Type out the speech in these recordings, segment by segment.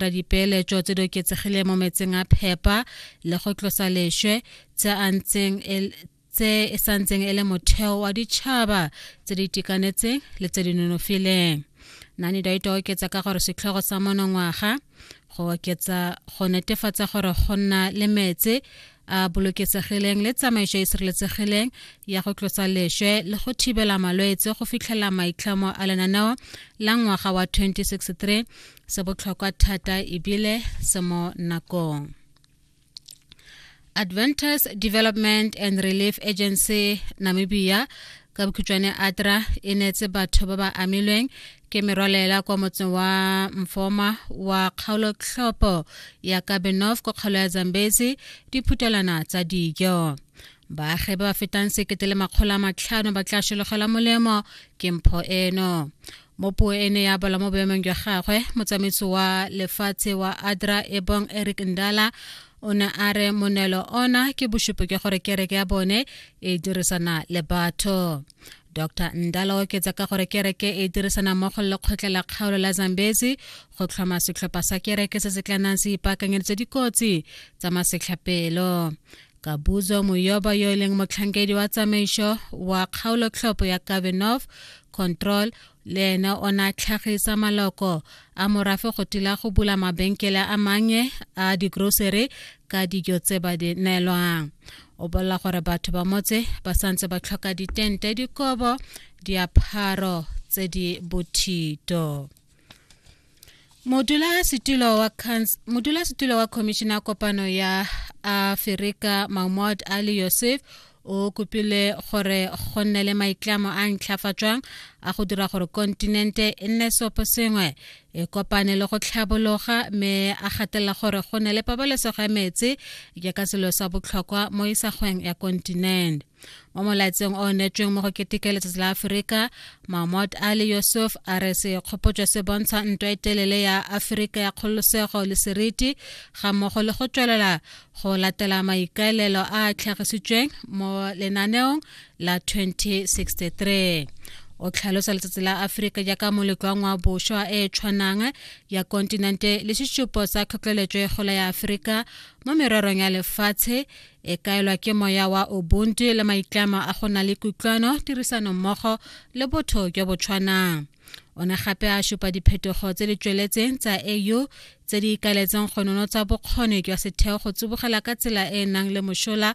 tla dipeeletso tse di oketsegileng mo metseng a phepa le go tlosa lešwe tse a ntseng e tse e sa ntseng e le motheo wa ditšhaba tse di itekanetseng le tse di nonofileng nani daito oketsa ka gore setlhogo sa monongwaga go oketsa go netefatsa gore go nna le metse a bolokesegileng le tsamaiso e sireletsegileng ya go tlosa lešwe le go thibela malwetse go fitlhela maitlhomo a lenaneo la ngwaga wa 2063 se botlhokwa thata ebile se mo nakong adventist development and relief agency namibia ka bokhutšwane atra e neetse batho ba ba amilweng ke merwalela kwa motseng wa mfoma wa kgaolotlhopo ya kabenof kwa kgaolo ya zambezi diphutelana tsa dijo baagi ba ba fetang sekete le makgolo a matlhano ba tla šologelwa molemo ke mpho eno mo puo e ne ya bala mo boemong jwa gagwe motsamaisi wa lefatshe wa adra ebong eric ndala o ne a re monelo ona ke bosupi jwa gore kereke ya bone e dirisana le batho dr ndala o oketsa ka gore kereke e dirisana mmogo le lekgotla la kgaolo la zambezi go tlhoma setlhopha sa kereke se se tla nang se ipaakanyeditse dikotsi tsa masetlhapelo ka buzo moyoba yo e leng motlhankedi wa tsamaiso wa kgaolo tlhopho ya kavenov control le ene o ne a tlhagisa maloko a morafe go tila go bula mabenkele a mannye a digrocery ka dijo tse ba di neelwang o bolela gore batho ba motse ba santse ba tlhoka ditente dikobo diapharo tse di bothito modulasetulo wa modulasetulo wa khomišene ya kopano ya aferika mahmud ali yosef o kopile gore go nne le maitlamo a ntlhafatswang a go dira gore kontinente e nne seopo sengwe e kopane le go tlhabologa mme a gatelela gore go ne le pabalesego ya metsi jaaka selo sa botlhokwa mo isagweng ya kontinente mo molaetseng o netsweng mo go keteke letsatsi la aforika mahmod ali yusuf a re sekgopotso se bontsha ntwa e telele ya aforika ya kgololosego le seriti ga mmogo le go tswelela go latela maikaelelo a a tlhagisitsweng mo lenaneong la 2063 o tlhalosa letsatsi la aforika jaaka moleko wa ngwabošwa e e tshwanang ya kontinente le sesupo sa tlhotlheletso e gola ya aforika mo mererong ya lefatshe e kaelwa ke moya wa ubuntu le maitlamo a go na le kutlwano tirisano mmogo le botho jo bo tshwanang o ne gape a supa diphetogo tse di tsweletseng tsa au tse di ikaeletseng go nonotsa bokgoni jwa setheo go tsibogela ka tsela e e nang le mosola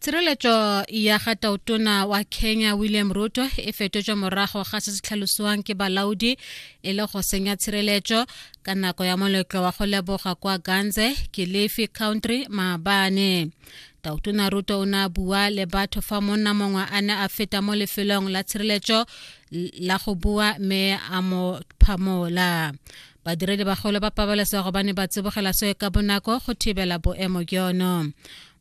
tshireletso ya ga tautona wa kenya william ruto e fetotswe morago ga se se tlhalosiwang ke balaodi e le go senya tshireletso ka nako ya moletlo wa go leboga kwa ganze kilifi country maabane tautona ruto o ne a bua le batho fa monna mongwe a ne a feta mo lefelong la tshireletso la go bua mme a mo phamola badiredi bagolo ba pabalesego ba ne ba tsibogela soe ka bonako go thibela boemo jono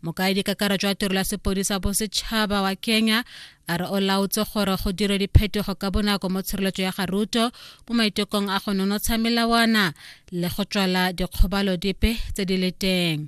mokaedi kakaretso wa tirelo ya sepodisa bosetšhaba wa kenya a re o laotse gore go dire diphetogo ka bonako mo tshireletso ya garuto mo maitekong a go nonotsha melawana le go tswala dikgobalo dipe tse di le teng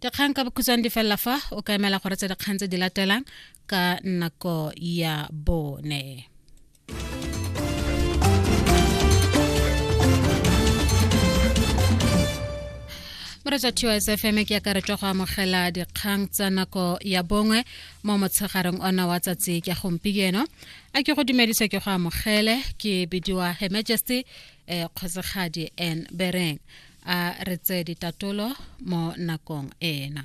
dikgang ka bokhutshwane di felela fa o ka emela gore tse dikgang tse di latelang ka nako ya bone moretsa tos fm ke ya karetswa go amogela dikgang tsa nako ya bongwe mo motshegareng ona wa tsatsi ke gompieno a ke go dumedisa ke go amogele ke bidiwa her majesty um kgosegadi n bereng a re tseye ditatolo mo nakong ena.